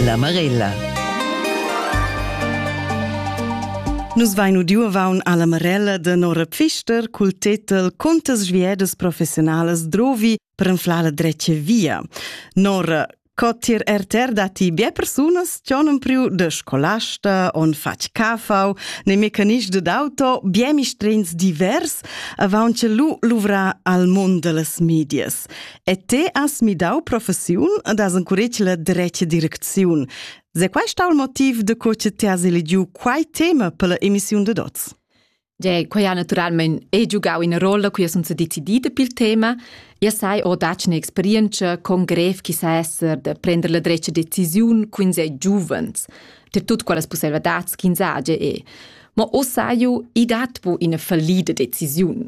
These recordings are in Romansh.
La Marella. Nus vain udiu avaun alla Marella de Nora Pfister cul tetel Contas sviedas professionalas drovi per enflar la dretje via. Nora, co tir RTR dati bie persunas cionum priu de scolasta on fac cafau ne mecanism de d'auto bie mistrins divers avaun ce lu luvra al mund de las medias. E te has midau professiun ed has encuretg la dretga direcziun. Se quai sta il motiv de co che ti has eligiu quai tema per la emissiun de Dots? De, quai ha naturalment e giugau ina rolla cui sun se decidida pel tema. Ja sai ho dac un'esperienza con grev chi sa esser de prender la dretga decisiun cun sei giuvens, ter tut quelles possibilidades ch'ins age e. Ma o saiu, i dat po ina fallida decisiun.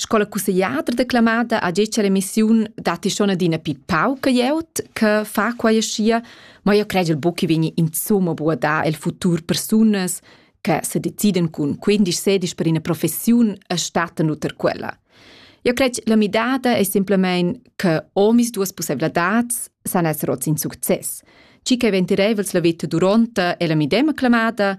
Sco la cussegliadra declamada ha detg all'emissiun datti schon adina pi pauca glieud che fa quai aschia, ma io credel buc che vegni insomma buca da el futur persunas che se deciden cun 15-16 per ina professiun e stattan uter quella. Io cred la midada è semplamein che omis duas possibilitads san esser oz in success. Ci che ventirevels la vita duronta e la midema clamada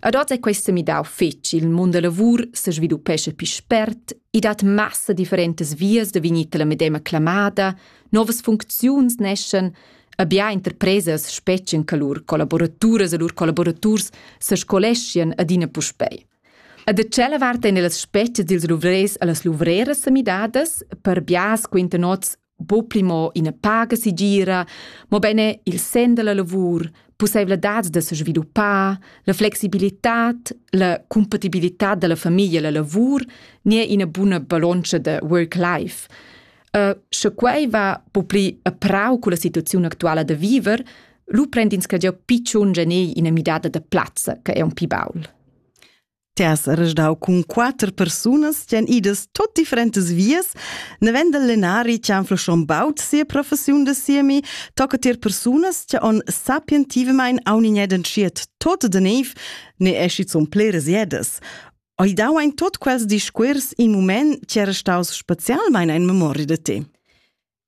Ad oz è questo midau fetg, il mund da lavur se sviluppesce più spert, i dat massa differentas vias da vegnir la medema clamada, novas funcziuns neschen, abia interpresas spetschen che lur collaboraturas e lur collaboraturs se scoleschien adina puspei. A da tschella vart en las spetschas dils luvrers e las luvreras semidadas, per bias quinta nots bo pli mo ina paga sigira, mo bene il sen della lavur, possibilitad da se sviluppar, la flexibilità, la compatibilità della famiglia e la lavur ne ina buna baloncia de work-life. Uh, sche quei va po pli a prau con la situazione attuale da viver, lu prendins che già picciun genei ina midada de plazza, che è un pi baul. Ti has resdau cun quater persunas ch'en idas tot differentas vias, nevend el lenari che han flschon baut sia professiun da siemi, tocca tier persunas che on sapientivamein aunignedan schiet tot de neiv, ne esci zun pleres jedas. Oi dau ein tot quels discuors in mument che era staus specialmein ein memoria de te.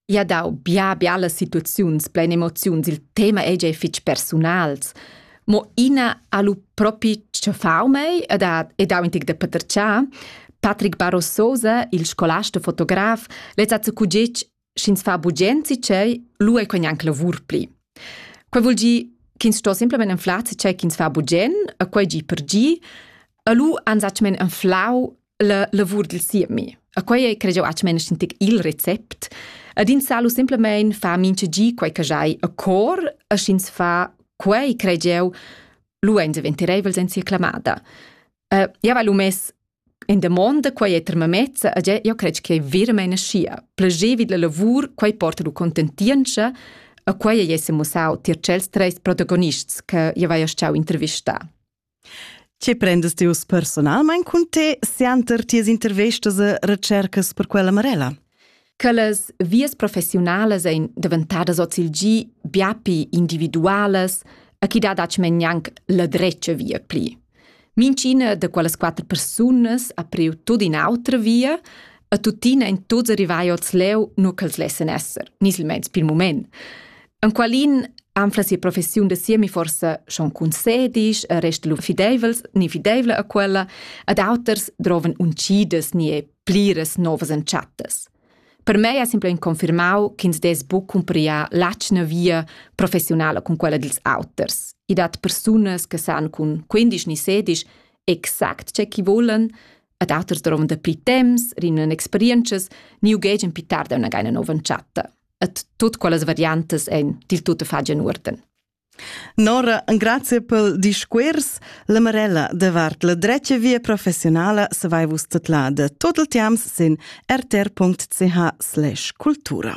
I ha dau bia bialas situaziuns plein emoziuns, il tema ei gia fitg persunals. Mo ina ha lu propi tschaffau mei ed ha, ed ha intig da paterciar. Patrick Barrososa, il scolasta fotograf, lez ha cugic sch'ins fa bugenzi cei, lu ei quei neanc lavur pli. Quei vul gi ch'ins sto semplamein anflar se cei ch'ins fa bugen, e quei gi per gi, e lu han zatgmen anflau la lavur dil siemi. A quei ei cregiu aunc meina sentir il recept. Ad in salu semplamein fa mincha gi quei che jai a cor, a sch'ins fa quei cregiu luein diventereivels en sia clamada. Uh, ja va lu mes in demonda quei è termamezza a io cred che è veramente scia. Plagevi la lavur, quei porta lu contentienza, a quei ei se mussau tier cels treis protagonists che io vai a stau intervista. Che prendas ti uss personalmein cun te sianter tias intervestas e recercas per quella Marella? Che las vias professiunalas ein daventadas ozilgi biapi individualas e chi dat aci men gnanc la dretga via pli. Mincina de quellas quatter persunas ha priu tut in autra via e tuttina in tuts arrivai oz leu, nu ch'els lessen esser, ni silmeins pil moment. Enqualin anfla sia professiun da siemi forsa schon concedis, resta lu fideivels ni fideivla a quella, ad auters droven uncidas ni e pliras novas entschattas. Per mei ha simpel confermau ch'ins des buc cumpriar l'atschna via professionala con quella dils auters. I dat persunas che san cun 15 ni 16 exact ce chi volen, ad auters droven da pli temps, rinnen experiences, ni ugegen pitar da una gaina nova entschata. et tut quellas variantas ein dil tutto fagen urden. Nora, grazie pel discuors. La Marella davart la drecha via professionala se vai vus tetlada. Total tiams sin rtr.ch/cultura.